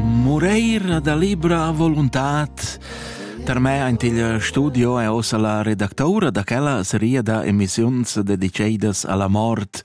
Mureir da libra voluntad Per me aint il studio è ossa la redactoura da quella seria da emissiuns dedicedas alla mort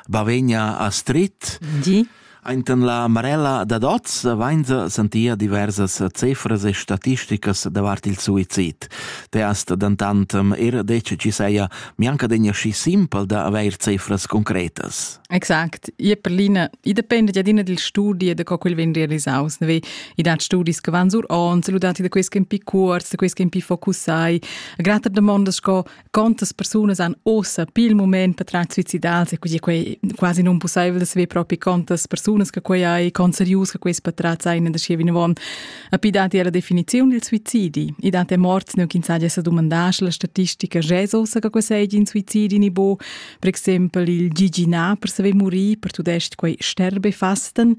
Bavegna Astrid. Di. Ainten la Marella da Doz vainza sentia diversas cefras e statisticas davart il suizid. Teast dantantam er dec ci seia mianca degna schi simpel da aveir cefras concretas. Exact. Io per l'ina, i depende ja d'ina dil studi e da co quel vegn realisaus. Ne? I dat studis che van sur ons, ludati da quels che un pi cuorts, da quels che un pi focussai. Grata domondas sco quantas persunas han ossa pi il moment per tract suicidals e quindi quei quasi non possibel da saper propi quantas persunas che quei hai, quant serius che quei patratz ein da schi vinavon. A pi dati era definiziun dil suicidi. I dati a morts ne che insaglia sa domandar la statistica jez ossa che quei sei in suicidi ni bo. Per exempel il gigina per saver murir per tudest quei sterbefasten,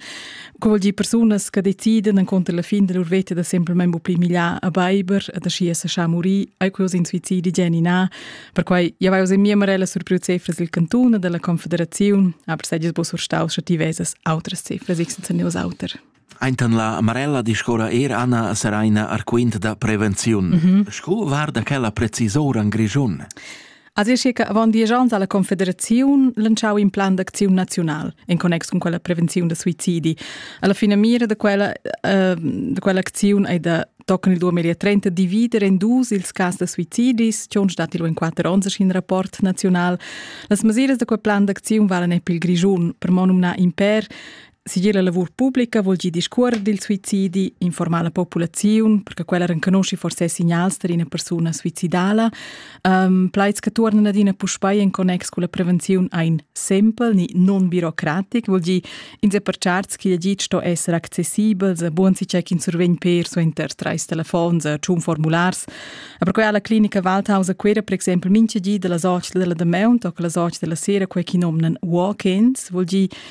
co vuol dir persunas che decidan encontro la fin della lur vita da semplicemente pli miglià a Beiber e da schi essa scha muri, ai quos in suicidi genina, per quai ja vai in mia marella sur priu cefras del cantone della confederazione, aber sei dis bo surstaus sche ti vesas outras cefras, ich senza neus auter. Aintan la Amarella discorra er Anna Seraina Arquint da prevenziun. Mm -hmm. Sco varda quella precisora in Grischun? Az è circa avant diesch ans alla Confederaziun lanciau in plan d'acziun naziunal en connex con quella prevenziun da suicidi. Alla fine mira da quella, uh, da quella acziun è da tochen il 2030 divider en dus ils cas da suicidis, che on stat in quatter ons in rapport naziunal. Las masiras da quel plan d'acziun valen epi il Grischun, per monumna imper Sigir la lavur publica vul gi discuorer dil suicidi, informar la populaziun, perché quella renconosci forse signals per ina persuna suicidala, um, plaids che tornan adina puspei in connex con la prevenzione ein simpel ni non birocratic, vuol gi inse per charts che gi sto essere accessibel, se buon si check in survegn per suenter treis telefons, tschun formulars. E per quella la clinica Waldhaus a Quera per exempel mince gi della socia della Demount o la socia della sera quei chi nomnan walk-ins, vuol gi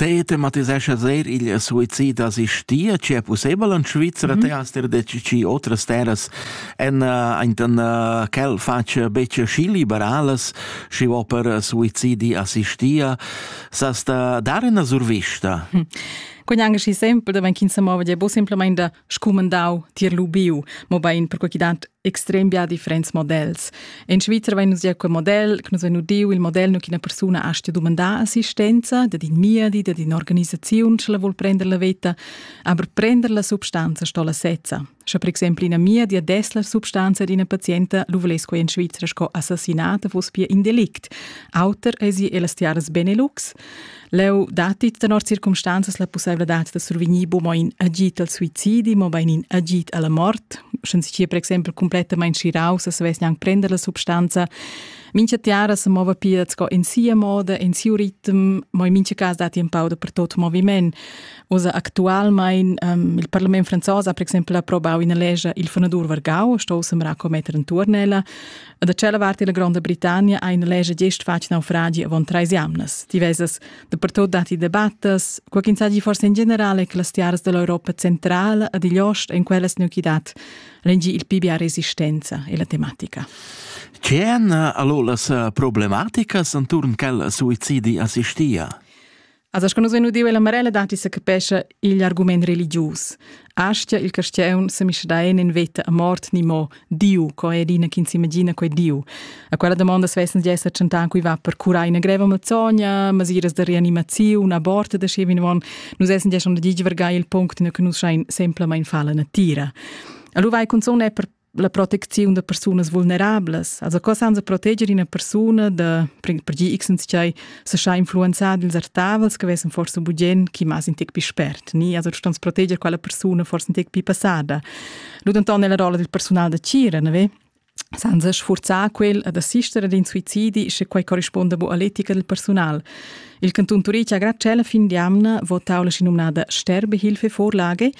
Te tematisescha sehr il suicid assistia, c'è possibile in Svizzera, mm -hmm. te hast dir ci otras terras en en quel faccia becce schi liberales, schi vo per suicidi assistia, sast dar una survista? Hm. Quegn anche si sempre, da wenn kind se mova, è bo semplicemente scumandau tier lubiu, mo bein per qualche dat extrem bia differents models. In Svizzer vegn nus gia quei model, che nus vein udiu il model nu ch'ina persuna astga dumandar assistenza dad in miedi, dad un'organisaziun, sche la vul prender la veta, aber prender la substanza sto la sezza. Sche per exempel ina miedi des la substanza ad ina pazienta, lu vuless quei in Svizzer sco assassinata fuss pia in delict. Auter esi elas tiaras Benelux. Leu datti tenor circumstanzas la pusseivladad da survegnir mo in agid al suicidi, mobein in agid alla mort. Sche si sia per exempel completamain schiraus, savess gnanc prender la substanza. Mincha tiara se mova pia sco in sia moda, in siu ritm, mo in mincha cas datti un pau dapertut moviment. Usa actualmein um, il parlament franzos ha per exempel approbau ina lescha il fanadur Vargau, sto semra commetter in turnella. A da tschella vart della Gronda Britannia ha ina lescha gest fatg naufragi avon treis jamnas. Diversas dapertut datti debattas, quei ch'insagi forse in generale che las tiaras dell'Europa centrala ad igl ost en quellas neuchidad rengi il pibia resistenza e la tematica. C'è allora las eh, problematicas intorno quella suicidi assistia? Asa sco nus vein udiu ella Marella datti se capescha igl argument religius. Astia il castiaun se misdaen en veta a mort ni mo Diu, co è dina chi s'imagina quei Diu. A quella domanda svessan di esser tschentan cui va per curai una greva malzogna, masiras de reanimaziun, aborte de schevin von, nus essen di schon de givergai il punct in che nus schein semplamain falla natira. Allora vai cunzon è per la protecziun da persunas vulnerablas. Also co sans proteger una persona da per gli x sei se scha influenzar dils artavels che vessen forse bugen chi mas in tec più spert, ni? Also du stans proteger quella persona forse in tec più passada. Lu denton nella rolla del personal da cira, ne ve? Senza sforzar quel ad assistere ad in suicidi se quei corrisponda bu all'etica del personal. Il canton Turitg ha grad cella fin di amna votau la sinominada Sterbehilfe-Vorlage,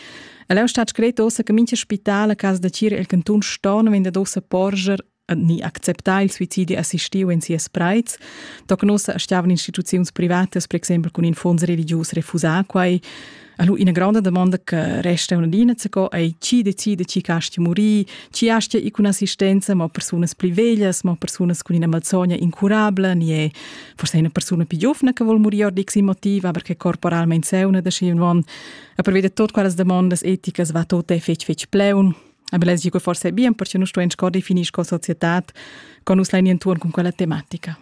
El è stato scretto ossa che mincha spital a casa da Cira el cantun Storn vende dossa porger ni acceptare il suicidio assistiu in sias preits, toc nossa stiavan instituziuns privatas, per exempel con in fonds religius refusar quai. Allo ina grande domanda che resta una dina co è chi decide chi casti morì, chi astia i con assistenza, ma personas pli veglias, ma personas con ina malsogna incurabile, ni è forse una persona più giovane che vuol morire di motiv, aber che corporalmente è una da schi un A prevede tot quellas demandas eticas va tot è fetg fetg pleun. Aber les dico forse bien perché nus stuein sco definir sco societad con nus lein intuon con quella tematica.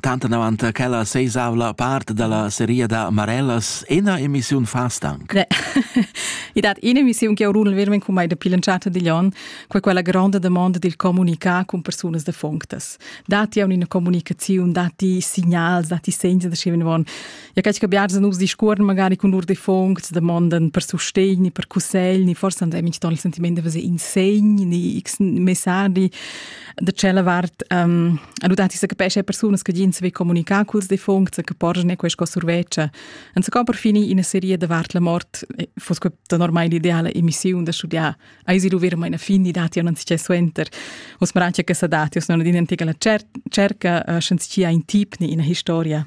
Tanta davant quella seisavla part della seria da Marellas ina emissiun fastank. Ne. I dat ina emissiun che urun vermen cum mai de pilanciata di Lyon, qua quella grande domanda del comunicare con personas de fonctas. Dati a una comunicazione, dati segnals, dati segni da sceven von Ja cač che biars nus discuorn magari cun lur defuncts damondan per sustegn ni per cussegl ni forse han minch ton il sentiment da fazer in segn ni x messaggi da tschella vart um, adutati sa capesce persunas che gin saver comunicar culs defuncts che porgen questa surveccia an se per fini in serie da vart la mort fos da normale ideale emissione da studiar ai si dover meine fini dati non si suenter os maracia che sa dati os non din antica la cerca schenzi in tip ni in historia